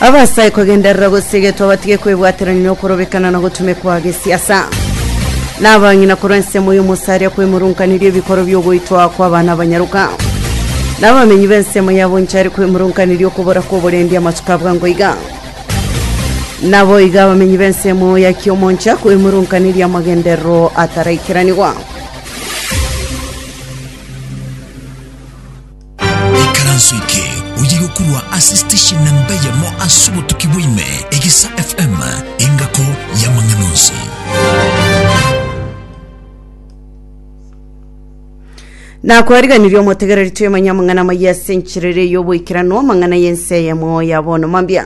Abasae kogenderera gosiga etwabatige kwebwaterania na okorobekana na gotumekwa gesiasa na abang'ina korwa ensemo y'omosaria kwemurunkaniri ebikoro by'ogoitwa kw'abana abanyaruka na abamenyi b'ensemo ya Bonchari kwemurunkaniri okobora kw'oborendi amatuko a bwango iga nabo iga abamenyi b'ensemo ya Kiomoncha kwemurunkaniri amagenderero ataraikiranigwa Ikaranso eke oye gokurwa ase station na mbeyemo ase obotuki bwaime egisa FM engako y'amang'ana onsi. nakwariganirie omotegereri twemanya amang'ana amaya ase enchirere y'oboikeranu amang'ana y'ense eyemo ya bono mambia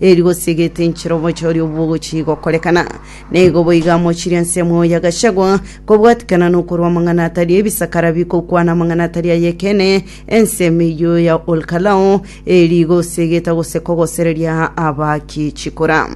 Eri gose egetinchiro omochie oria obwogochia gokorekana, nigo boigo amochirie ensemo ya Gachagua kobwatikana nokorwa amang'ana atari ebisakara bikokwana amang'ana atari ay'ekeene, ensemo eyio ya Olkalou eri gose egeta gose kogosereria abaaki chikura.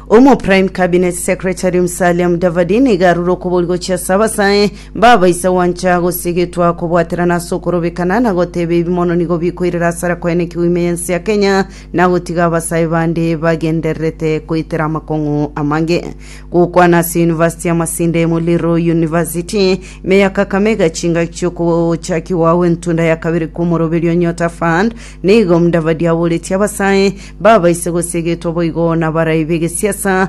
Omo Prime Cabinet Secretary Musalia Mudavadi nigo arure okoborigochia ase abasae Baba, inse gwancha gose getwa kobwaterana ase okorobekana na goteba ebi mono nigo bikoirera asara kwaye ne kegwimo y'ense ya Kenya na gotiga abasae bande bagendererete koitera amakong'u amange. Gokwana ase University ya Masinde, Muliro University, ime ya Kakamega chingaki chiokochakigwa gwe ntunda ya kabere kw'omoroberio Nyota Fund nigo Mudavadi aboretie abasae, baba, inse gose getwa boigo nabarai begesiasa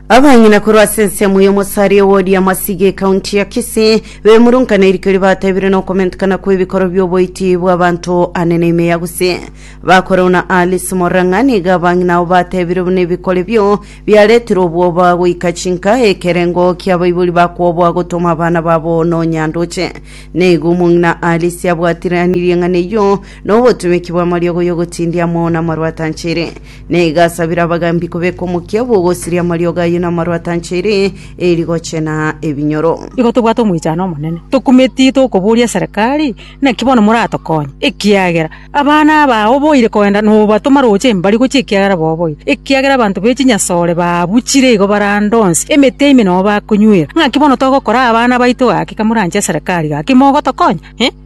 Abang'ina korwa ase ensemo y'omosaria wodi amasiga ekaunti ya Kisii bemurungana erikeri batebire na okomentekana kw'ebikoro bi'oboiti bw'abanto ane na ime ya Gusii. Bakoreu na Alice Morang'a nigo abang'ina abo batebire buna ebikoro ebio biaretirwe obwoba goika chinka ekerengo ki'abaibori bakwoboa gotoma abana babo nonya ndoche. Nigo omong'ina Alice abwatiranirie ng'ana eyio na obotumeki bw'amariogo y'ogotindia amo namarwata anchere. Na igasabera abagaambi kobeka omokia bw'ogosiria amariogo ayio namarwa atanchaire, e rigoche na ebinyoro. Nigo tobwate omoichano omonene, tokumeti tokoboria eserekari, naki bono moratokonye, ekiagera abana aba oboire kogenda nobatoma roche embari gochia ekiagera boboire, ekiagera abanto be chinyasore baabuchire igo barande onsi, emete ime nao bakonywera. Naki bono togokora abana baito gaki kamoranche eserekari gaki mogotokonya?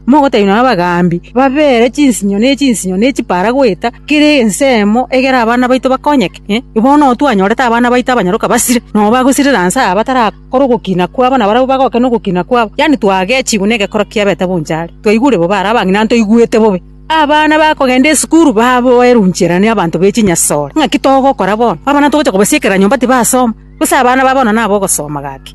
Mogotenenwa nabagaambi, babeere chinsinyo ne chinsinyo ne chipaara goeta kera ensemo, egera abana baito bakonyeke. Bono twanyorete abana baito abanyaroka basire, nao bagosirera nse aa batarakora ogokina kwabo, na barabwo bagoke nogokina kwabo, yaani twagechigwe negekoro kia Beta bonchari, twaigure bobe are abang'ina ntoigwete bobe. Abana bakogenda esukuru baboerwe inchera nabanto be chinyasore. Ng'aki togokora bono? Abana togocha kobasiekera nyomba tibasoma? Gose abana ba bono nabogosoma gaki?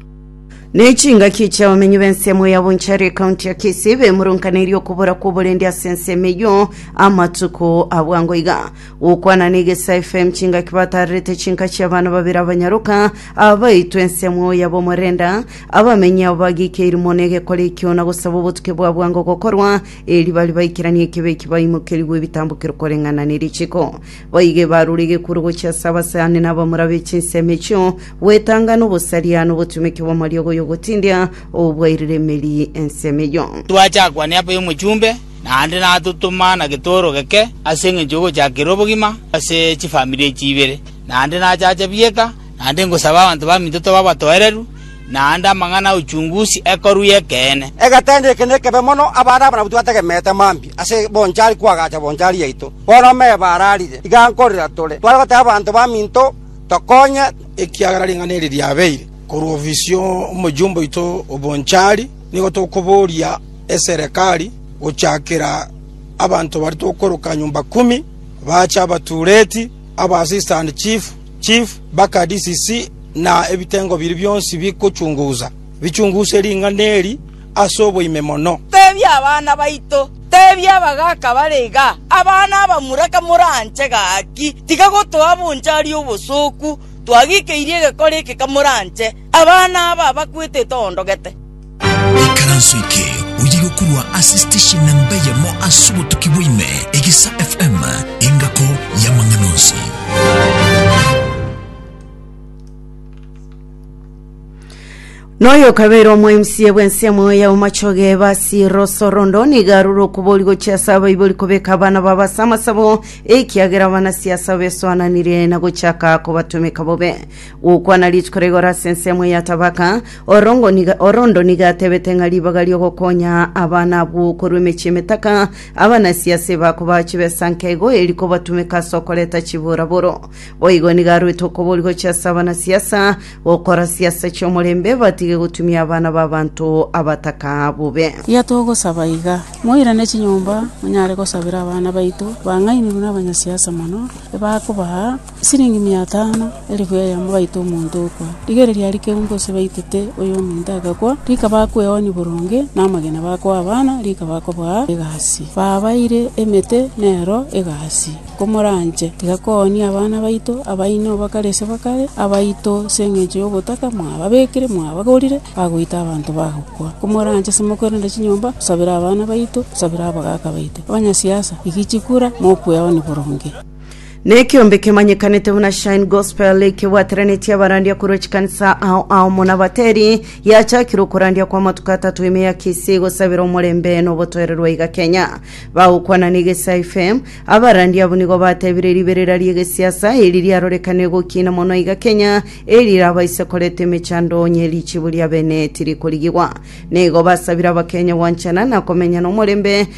Ne chingaki chi'abamenyi b'ensemo ya Bonchari ekaunti ya Kisii bemurunkaneirie okobora kw'oborendi ase ensemo eyio amatuko abwango iga. Gokwana na Egesa FM chingaki batarerete chinka chi'abana babere abanyaroka abaitwe ensemo ya Bomorenda. Abamenyi abo bagikeiri mono egekora ekio na gosaba obotuke bwa bwango gokorwa, eri bari baikeranie ekebe eki baimokerigwe ebitambokero koreng'ana ne richiko. Baige barure egekuru gochia ase abasani na abamura be chinsemo echio, gwetangana obosaria na obotumeki bw'amariogo y'ogotindia obwairire emeri ensemo eyio. Twacha kwane apo y'omochumbe, naende natotoma na getooro geke ase engencho y'ogochakerera obogima ase chifamiri echi ibere. Naende nachacha bieka, naende ngosaba abanto baminto tobe abatoereru, naende amang'ana 'uchunguzi ekorwa y'ekeene. Egetende eke nekebe mono abana abanabotu bategemeete mambia ase bonchari kwagacha bonchari yaito. Bono ameba ararire, iga nkorera tore, tware goteba abanto baminto, Tokonye, ekiagera ring'ana eri riabeire korwa ofisi y'omoyomba oito o bonchari, nigo tokoboria eserekari gochakera abanto baria tokoroka nyomba kumi, baache abatureti, abasistant chief, Chief baka DCC na ebitengo biria bionsi bigochungusa, bichunguse ring'ana eri ase oboime mono. Teebia abana baito, teebia abagaaka bare igaa, Abana abamura kamoranche gaki, tiga gotoa bonchari obosooku, twagikeirie egekora eke kamoranche, abana aba bakwete toondogete. Ikaranso eke oyiga korwa ase station namba eyemo ase obotuki bwaime, Egesa FM, engako y'amang'ana onsi. Noyo kabere omwaimsie bw'ensemo ya omachoge basi rosorondo nigarure okubori gochia ase abaibori kobeka abana baba ase amasabo ekiagera abanasiasa besoananire na gochaka kobatumeka bobe gokwana rituko rigoro ase ensemo ya tabaka Orongo niga, Orondo niga atebete ng'a ribaga ri'ogokonya abana abwo korwa emechie emetaka, abanasiase bakobaha chibesa nke igo eri kobatumeka ase okoreta chiburaburo. Boigo nigo aruete okoboria gochia ase abanasiasa gokora siasa chi'omorembe, batige gotumia abana b'abanto abataka bobe. Tiga togosaba iga, moirane chinyomba monyare gosabera abana baito bang'ainigwe nabanyasiasa mono ebakobaha. Siringi mia tano, elifu eyemo baita omonto okwa. Rigere riaria keumbe ase baitete oyo ominto agakwa, rika bakweonia boronge, na amagena bakoa abana, rika bakobaa egasi. Babaire emete nero egasi. Komoranche, tiga koonia abana baito, abaino obakare ase bakare, abaito 'se engencho y'ogotaka mwababekire, mwabagorire, bagoita abanto bagokwa. Komoranche ase mokorenda chinyomba, tosabere abana baito, tosabere abagaaka baito. Abanyasiasa, rigichikura, mokweonia boronge. Nekiombe kemanyekanete buna Shine Gospel ekebwateranetie abarandia korwa chikanisa ao ao muna bateri yachakire okorandia kwa amatuko atato ime ya Kisii gosabera omorembe na obotoererwa iga Kenya. Bagokwana na Egesa FM, abarandia abwo nigo batebire riberera ri'egesiasa eri riarorekane gokina mono iga Kenya erirabaise koreta emechando onye richibu ria bene tirikorigiwa. Nigo basabire Abakenya gwanchana na komenyana omorembe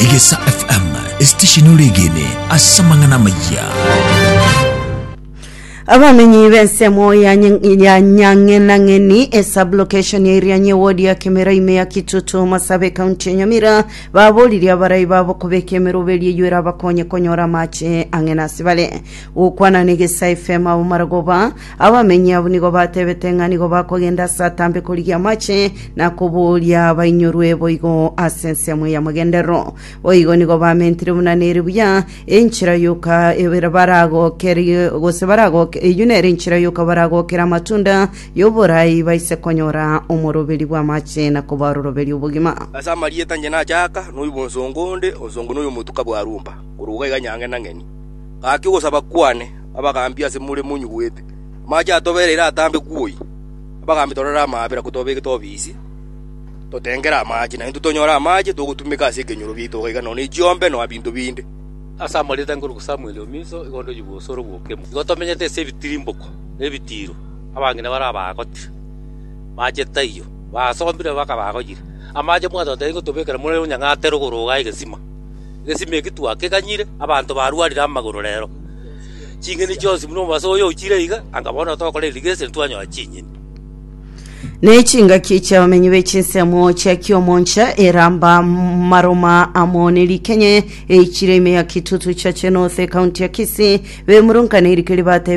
Egesa FM, esitesheni oregene ase amang'ana amayia. Abamenyi b'ensemo ya Ny- ya nyang'enang'eni esublocation ya irianyi ewodi ya kemera ime ya kitutu masabe ekaunti ya nyamira baboririe abarai babo kobeka emeroberi eyio erabakonye konyora amache ang'e nasibare gokwana na egesa fm abo maragoba Abamenyi abwo nigo batebete ng'a nigo bakogenda ase atambe korigia amache na kobooria bainyorwe boigo ase ensemo y'amagenderero. Boigo nigo bamentire buna nere buya enchera yoka ebere baragokerie gose baragoke eyio nere enchera yoka baragokere amatunda y'oborai baise konyora omoroberi bw'amache na kobaroroberia obogima. Ase amarieta inche nachaaka, noyio bw'ensongo onde, ensongo noyio omotuka bwa Rumba, korwa iga iga nyangenang'eni. Gaki ogosaba kwane. abagaambi ase more monyugwete, amache atobereire atambe kwoi. Abagaambi torore amaabera kotobeke tobisi, totengere amache, na intwe tonyore amache togotumeka ase ekenyoro biaito gaiga nonya chiombe nonya binto binde. Ase amarita ngoruka Samweli o Miso igo ndoyigwe osoro bw'okemo. Igo tomenyete ase ebitirimboko na ebitiiro, abang'ina baria baagotire amache taiyo, baasombire bakaba bagoyire amache mwatotebia ingotobekera more onyang'ate rogoro iga egesima. Egesima eki twakeganyire abanto barwarire amagoro rero. Ching'eni chionsi buna omobaso oyo ochire iga, anga bono togokora irrigation twanyora chinyeni. Ne chingaki chi'abamenyi be chinsemo chia Kiomoncha eramba maruma amo ne rikenya eichire ime ya Kitutu Chache North, ekaunti ya Kisii, bemurunka ne rike ribatebire